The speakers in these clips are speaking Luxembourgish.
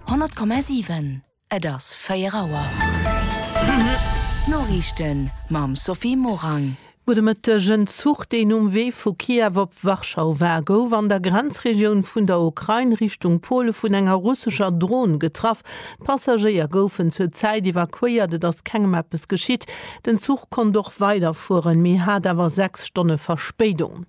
100,7 Et ass 4 Auer. D'Noriichten mam Sophie Morang. Gudde Mëtteg. En Zuch, deen um Wee vu Kiew op Warschau war, gouf an der Grenzregioun vun der Ukrain Richtung Pole vun enger russescher Dron getraff. D'Passagéier goufen zur Zäit evakuéiert, et ass kengem eppes geschitt. Den Zuch konnt och weiderfueren, mee hat awer sechs Stonne Verspéidung.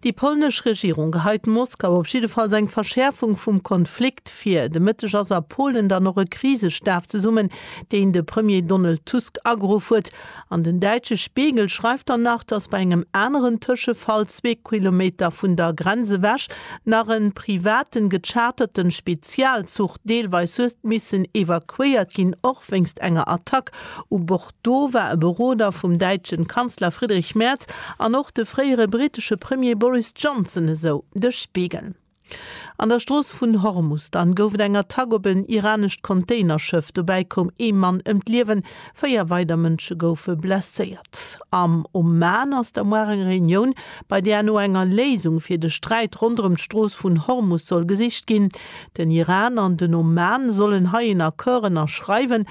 Déi polnesch Regierung geheit Moskau op jiddefalls eng Verschäerfung vum Konflikt vir. De Mëtteg ass a Polen dann och e Krisestaf zesummen, deen de Premier Donald Tusk ageruff huet. An den däitsche Spiegel schreift dann nach, datt bei engem aneren Tëschefall zwee Kilometer vun der Grenz ewech nach e privaten, gecharterten Spezialzuch deelweis huet missen evakuéiert ginn, och wéinst enger Attack u Bord. Do war e Beroder vum däitschen Kanzler Friedrich Merz an och de fréiere brittesche Premier Boris Johnson, esou de Spiegel. An der Strooss vun Hormus dann gouf et eng Attack op en iranescht Containerschëff. Dobäi koum ee Mann ëm d'Liewen, véier weider Mënsche goufe blesséiert. Am Oman ass da muar eng Reunioun, bei där no enger Léisung fir de Sträit ronderëm d'Strooss vun Hormus soll gesicht ginn. Den Iran an den Oman sollen hei en Accord ënnerschreiwen.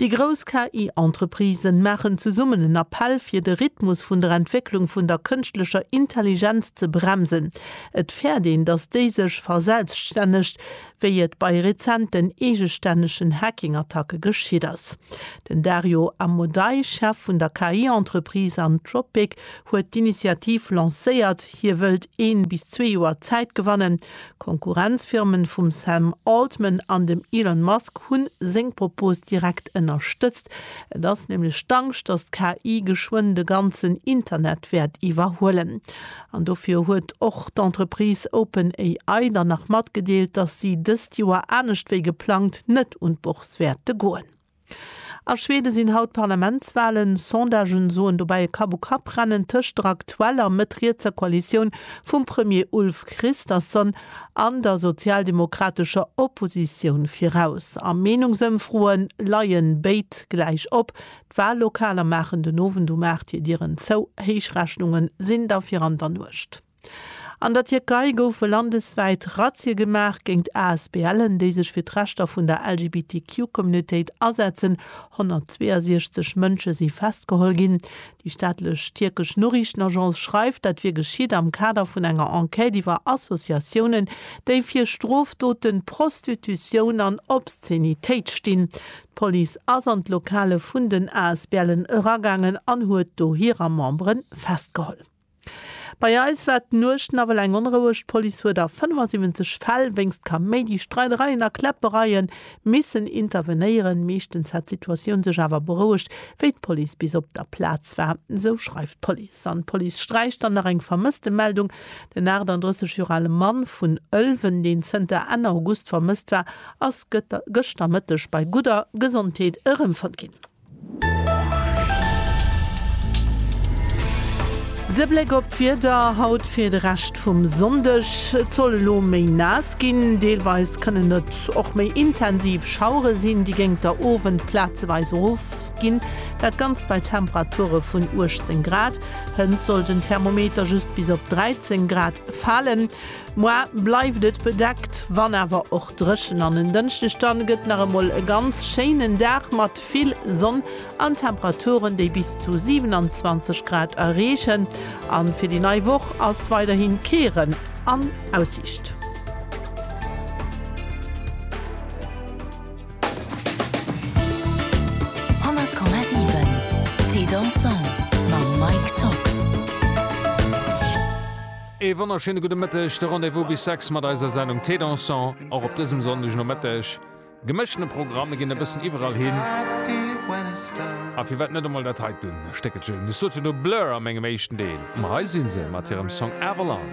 Déi grouss KI-Entreprisen maachen zesummen en Appell fir de Rhythmus vun der Entwécklung vun der kënschtlecher Intelligenz ze bremsen. Et fäert een, datt déi sech verselbststännegt, wéi et bei rezenten eegestännegen Hacking-Attacke geschitt ass. Den Dario Amodei, Chef vun der KI-Entreprise Anthropic, huet d'Initiativ lancéiert. Hie wëllt een bis zwee Joer Zäit gewannen, D'Konkurrenzfirmen vum Sam Altman an dem Elon Musk hunn seng Propos direkt ënnerstëtzt. Et ass nämlech d'Angscht, datt d'KI geschwënn de ganzen Internet wäert iwwerhuelen. An dofir huet och d'Entreprise OpenAI dann nach matgedeelt, datt si dëst Joer anescht wéi geplangt net un d'Bourse wäerte goen. A Schweden sinn haut d'Parlamentswalen. Sondagen soen dobäi e Kapp-u-Kapp-Rennen tëscht der aktueller mëtt-rietser Koalitioun vum Premier Ulf Kristersson an der sozialdemokratescher Oppositioun viraus. A Meenungsëmfroe leien béid gläich op. D'Wallokaler maachen den Owend um 8 hir Dieren zou. Héichrechnunge sinn da fir an der Nuecht. An der Tierkei goufe landeswäit Razzie gemaach géint ASBLen, déi sech fir d'Rechter vun der LGBTQ-Communautéit asetzen. 162 Mënsche si festgeholl ginn. Déi staatlech tierkesch Noriichtenagence schreift, dat wier geschitt am Kader vun enger Enquête iwwer Associatiounen, déi fir Strofdoten, Prostitutioun an Obszenitéit stinn. D'Police ass an d'Lokale vun den ASBLen eragaangen an huet do hirer Membere festgeholl. Bei eis war d'Nuecht nawell eng onroueg. D'Police huet a 75 Fäll wéinst Kaméidi, Streidereien a Kläppereie missen intervenéieren. Meeschtens hätt d'Situatioun sech awer berouegt, wéi d'Police bis op der Plaz war, esou schreift d'Police. An d'Police sträicht dann nach eng Vermësstemeldung, Den 38 Joer ale Mann vun Ëlwen, deen zënter Enn August vermësst war, ass gëschter Mëtteg bei gudder Gesondheet erëmfonnt ginn. De Bléck op d'Wieder haut fir de Rescht vum Sonndeg, Et soll elo méi naass ginn, deelweis kënnen et och méi intensiv Schauere sinn, déi géingt der Owend plazeweis erofginn. Dat Ganzt bei Temperature vun 18 Grad. Hënt soll den Thermometer just bis op 13 Grad falen. Moar bleift et bedeckt, wann awer och. Dréchen an en Dënschdeg dann gëtt nach emol e ganz schéinen Dag mat vill Sonn an Temperaturen, déi bis zu 27 Grad erreechen. A fir déi nei Woch ass weiderhi kee Rënn an Aussiicht. Ee wonnerschéine gudde Mëtteg, de Rendez-vous bis 6 mat eiser Sendung Thé Dansant, och op dësem Sonndegnomëtteg. Gemëschtene Programm, mir ginn e bëssen iwwerall hin. A firwat net emol dat hei dunn Stéckelchen? Mir soten do Blur a mengem éischten Deel, ma hei si se mat hirem Song Avalon.